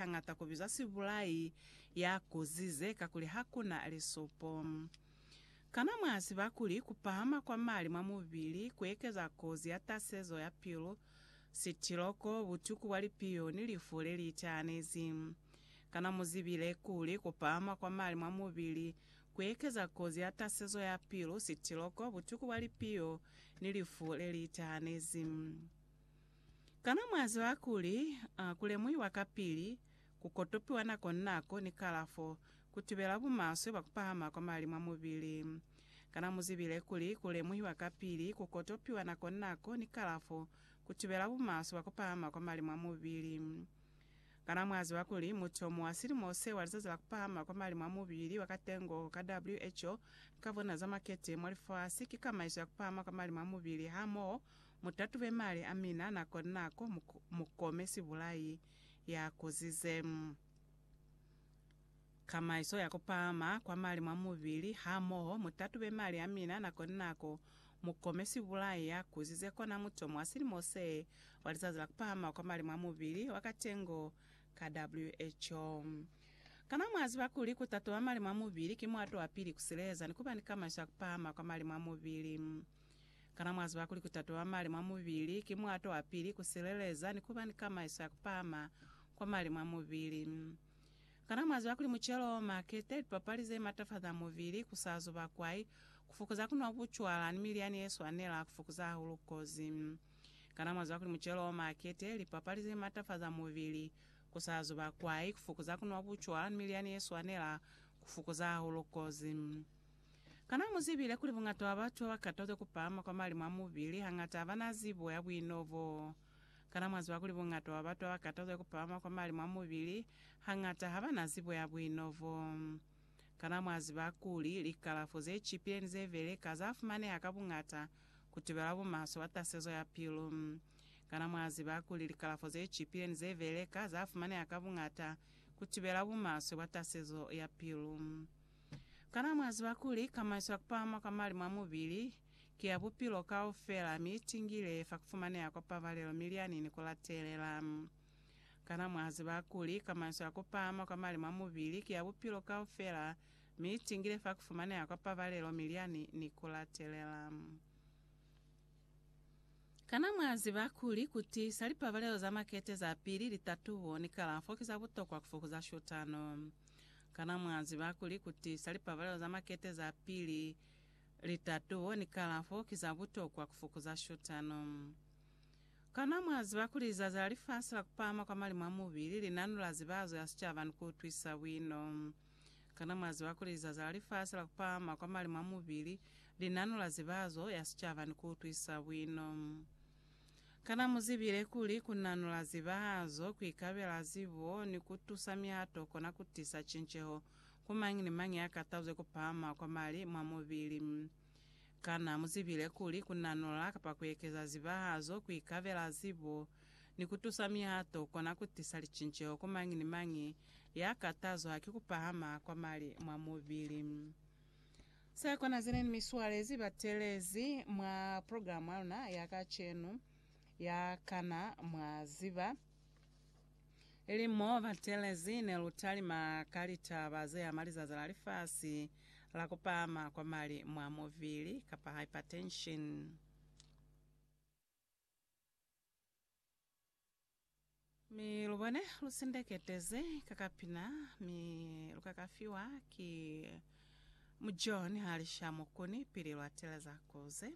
Hañata ku bizwa sibulai ya kuzize kakuli ha ku na lisupo. Kana mwa ziba kuli ku pahama kwa mali mwa mubili ku ekeza kozi ya tasezo ya pilu, sitiloko, butuku bwa lipiyo ni lifu le li itahanezi? Kana mu zibile kuli ku pahama kwa mali mwa mubili ku ekeza kozi ya tasezo ya pilu, sitiloko, butuku bwa lipiyo ni lifu le li itahanezi? Kana mwa ziba kuli ku lemuhiwa kapili, ku kotopiwa nako ni nako, ni kalafo, ku tibela bumaswe bwa ku pahama kwa mali mwa mubili? Kana mu zibile kuli ku lemuhiwa kapili, ku kotopiwa nako ni nako, ni kalafo, ku tibela bumaswe bwa ku pahama kwa mali mwa mubili? Kana mwa ziba kuli mutomo wa silimo se wa Lizazi la ku Pahama kwa Mali mwa Mubili wa katengo ka WHO ka bona za makete mwa lifasi ki kamaiso ya ku pahama kwa mali mwa mubili hamoho Mu tatube mali a mina nako ni nako, mu, mu kome sibulai ya kuzize. Kamaiso ya ku pahama kwa mali mwa mubili, hamoho, mu tatube mali a mina nako ni nako, mu kome sibulai ya kuzize. Kona mutomo wa silimo se, wa lizazi la ku pahama kwa mali mwa mubili, wa katengo ka WHO. Kana mwa ziba kuli ku tatuba mali mwa mubili ki muhato wa pili ku sileleza ni ku ba ni kamaiso ya ku pahama kwa mali mwa mubili? Kana mwa ziba kuli ku tatoba mali mwa mubili ki mwato wa pili ku sileleza ni ku ba ni kamaiso ya ku pahama kwa mali mwa mubili? Kana mwa ziba kuli mucelo o makete, lipapali ze matafaza mubili, ku sa zuba kwai, ku fokoza ku nwa bucwala, ni miliani ye swanela ku fokoza hahulu kozi? Kana mwa ziba kuli mucelo o makete, lipapali ze matafaza mubili, ku sa zuba kwai, ku fokoza ku nwa bucwala, ni miliani ye swanela ku fokoza hahulu kozi? Kana mu zibile kuli bungata bwa batu ba katozwe ku pahama kwa malimu a mubili hañata ha ba na zibo ya buino bo? Kana mwa ziba kuli bungata bwa batu ba katozwe ku pahama kwa malimu a mubili hañata ha ba na zibo ya buino bo? Kana mwa ziba kuli likalafo ze cipile ni ze beleka za fumaneha ka bungata ku tibela bumaswe bwa tasezo ya pilu? Kana mwa ziba kuli likalafo ze cipile ni ze beleka za fumaneha ka bungata ku tibela bumaswe bwa tasezo ya pilu? Kana mwa ziba kuli kamaiso ya kupahama kwa mali mwa mubili ki ya bupilo kaufela mi itingile fa kufumaneha kwa pabalelo miliani ni kulatelela? Kana mwa ziba kuli kamaiso ya kupahama kwa mali mwa mubili ki ya bupilo kaufela mi itingile fa kufumaneha kwa pabalelo miliani ni kulatelela? Kana mwa ziba kuli ku tiisa lipabalelo za makete za pili, litatubo, ni kalafo ki za butokwa ku fokoza shutano? Kana mwa ziba kuli ku tiisa lipabalelo za makete za pili, litatubo, ni kalafo ki za butokwa ku fokoza shutano? Kana mwa ziba kuli Lizazi la Lifasi la Kupahama kwa Malimu a Mubili li nanula zibazo ya sicaba ni ku utwisa buino? Kana mwa ziba kuli lizazi la lifasi la kupahama kwa mali mwa mubili li nanula zibazo ya sicaba ni ku utwisa buino? Kana mu zibile kuli ku nanula zibazo, ku ikabela zibo, ni ku tusa mihato kona ku tisa cinceho ku mañi ni mañi ya katauzwe ku pahama kwa mali mwa mubili? Kana mu zibile kuli ku nanola kapa ku ekeza zibahazo, ku ikabela zibo, ni ku tusa mihato kona ku tisa licinceho ku mañi ni mañi ya katazwa ki ku pahama kwa mali mwa mubili? Se konazile ni miswalezi batelezi mwa programu ya luna ya kacenu ya Kana mwa Ziba? Ili mo ba telezi ne lu talima ka litaba ze ama lizazi la lifasi la ku pahama kwa mali mwa muvili, kapa hypertension. Mi lu bone lu sindeketezi ka ka pina, mi lu ka ka fiwa ki mujoni ha lishamo kuni pili lwa teleza kuze.